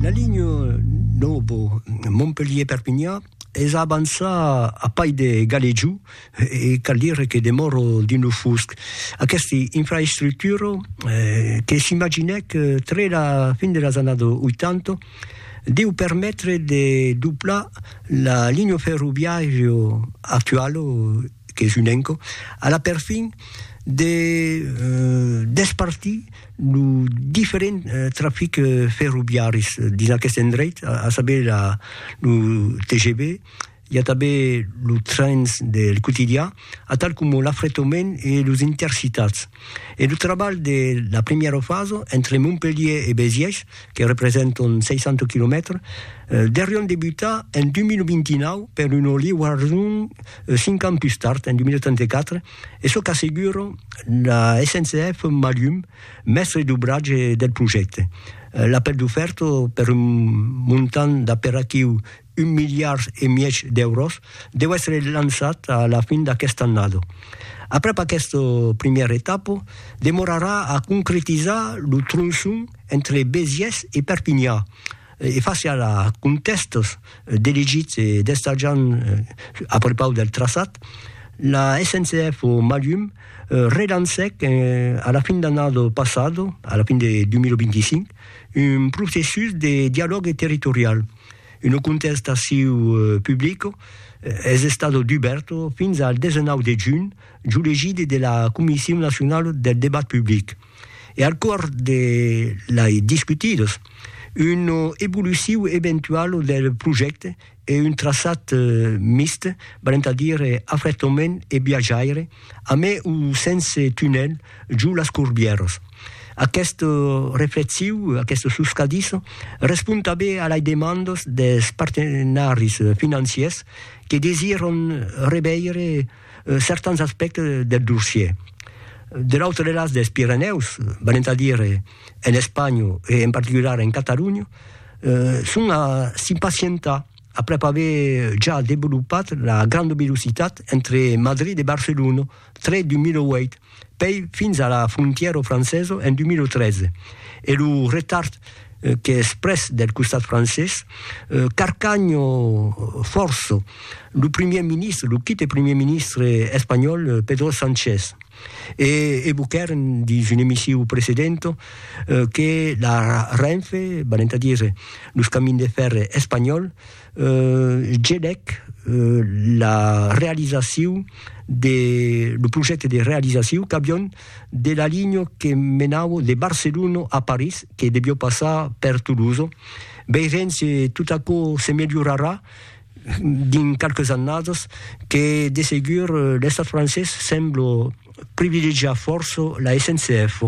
La linha nòva Montpelhièr-Perpinhan es a avançar a pair de Galejou e cal dire que demòra dins lo fusc. Aquesta infraestructura, que s'imaginèc tre la fin de las annadas 80, deu permetre de doblar la linha ferroviària actuala qu'es un enco a la perfin de despartir lo diferent trafic ferroviaris dins aqueste endreit, a saber la, lo TGV, i a tanben los trens del quotidià, atal coma l'afretament e los intercitats. E lo trabalh de la primièra fasa, entre Montpelhier e Béziers, que representan 60 quilomètres, deurián debutar en 2029 per una liuason 5 ans pus tard, en 2034, E çò qu'assegura la SNCF Malhum, mèstre d'obratge del projècte. L'apèl d'ofèrta per un montant d'aperatiu un miliard e mièg d'èuros deu èstre lançat a la fin d'aquesta annada. Aprèp aquesta primièra etapa, demorarà a concretizar lo tronçon entre Besiès e Perpinha, e fasiá la contèstas d'elegits e d'estatjant a prepaus del traçat, la SNCF o Malhum relancèc a la fin d'annada passada, a la fin de 2025, un processus de dialògue territorial. Una contestaciu publica es estada dubèrta fins al 19 de junh, jo legidi de la Comission nationale del debat public. e al cors de lai discutidos una evoluciu eventuala del projècte e un traçat mixt, valent a dire afrètament e viatjaire, amé o sense tunèl, jo las Corbièras. Aquesta reflexiu, aquesta suscadissa, respond tanben a lai demandas des partenaris financiers que desiran reveire, certans aspèctes del dossier. De l'autre las dels Pirenèus, valent a dire en Espanha e en particular en Catalonha, son a s'impacientar aprèp aver ja devolopat la granda velocitat entre Madrid e Barcelona, tret 2008, pei fins a la frontièro franceso en 2013 e lo retard qu'es pres del costat francés, Carcagno forço lo primièr ministre, lo quite primièr ministre espanhòl Pedro Sanchez e evoquèren dins un emisiu precedento que la Renfe, valent a dire los camins de fèrre espanhòls, Gelèc la realizacion de lo projècte de realizacion qu'avion de la linha que menava de Barcelona a París, que deviá passar per Toulouse. Veirem se tot aquò se melhorarà dins qualques annadas, que de segur l'estat francés sembla privilegiar fòrça la SNCF.